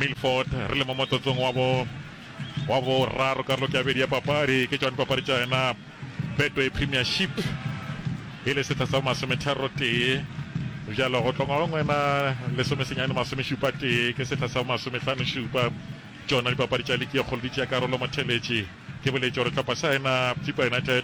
Milford, re le mo motsotsong wa bo, wa boraro karolo ke ya bobedi ya papadi, ke tšone papadi tša yena Betway Premiership e le sehla sa bo masometharo tee, bjalo go tlongwa go ngwena lesome senyane masome šupa tee ke sehla sa bo masomehlano šupa, tšona dipapadi tša liki ye kgolo di tšea karolo motheletši, ke boletše gore hlopha sa yena Chippa United,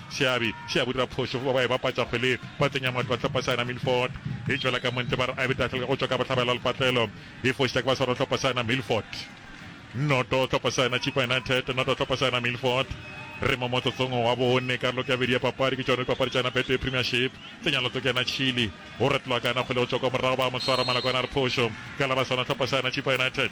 Seabi se a bodira phošo fo ba ba e bapatša kgwele patleng ya Matlo a Tlhopha Saena Milford e tšwela ka montle ba re Abby Tahlelka go tšwa ka bohlabela lepatlelo e fošetša ke ba swarwa Tlhopha Saena Milford noto Tlhopha Saena Chippa United noto Tlhopha Saena Milford re mo motsotsong wa bone karolo ke ya bedi ya papadi ke tšona dipapadi tša na Betway Premiership tse nyalo tso ke na Chile go retloa ka na kgwele go tšwa kwa morago ba mo swara Malakwana a re phošo ka la ba swarwa Tlhopha Saena Chippa United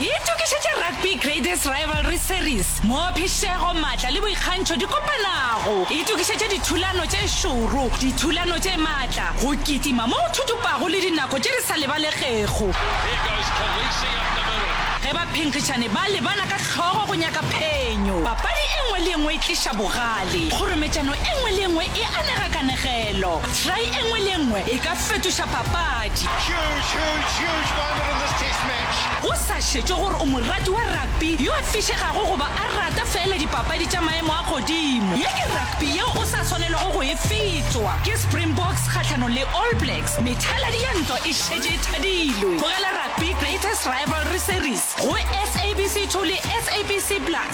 Itokišetše Rugby Greatest Rivalry Series, mo phišego, matla le boikgantšho di kopanago. Itokišetše dithulano tše šoro, dithulano tše matla, go kitima mo go thutupago le dinako tše di sa lebalegego. Ge baphenkgišani ba lebana ka hlogo go nyaka phenyo, papadi e nngwe le e nngwe e tliša bogale. Kgorometšano e nngwe le e nngwe e anega kanegelo. Try e nngwe le e nngwe e ka fetoša papadi. Huge, huge, huge moment in this test match. Go sa šetšwe gore o morati wa rugby yo a fišegago goba a rata feela dipapadi tša maemo a godimo, ye ke rugby yeo o sa swanelwago go e fetšwa. Ke Springboks kgahlanong le All Blacks, methaladi ya ntwa e šetše e thadilwe. Tlogela rugby Greatest Rivalry Series go SABC 2 le SABC Plus.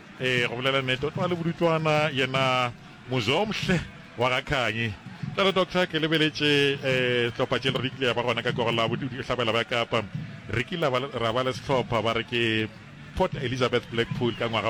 Ee, go bolela nete, o tlwale bodutswana yena Muzomhle wa ga Khanyi. Tlale doctor, ke lebeletše sehlopha tše le rikile ya ba gona ka koro la bohlabela bja Kapa. Re kile ra ba le sehlopha ba re ke Port Elizabeth Blackpool ka ngwaga wa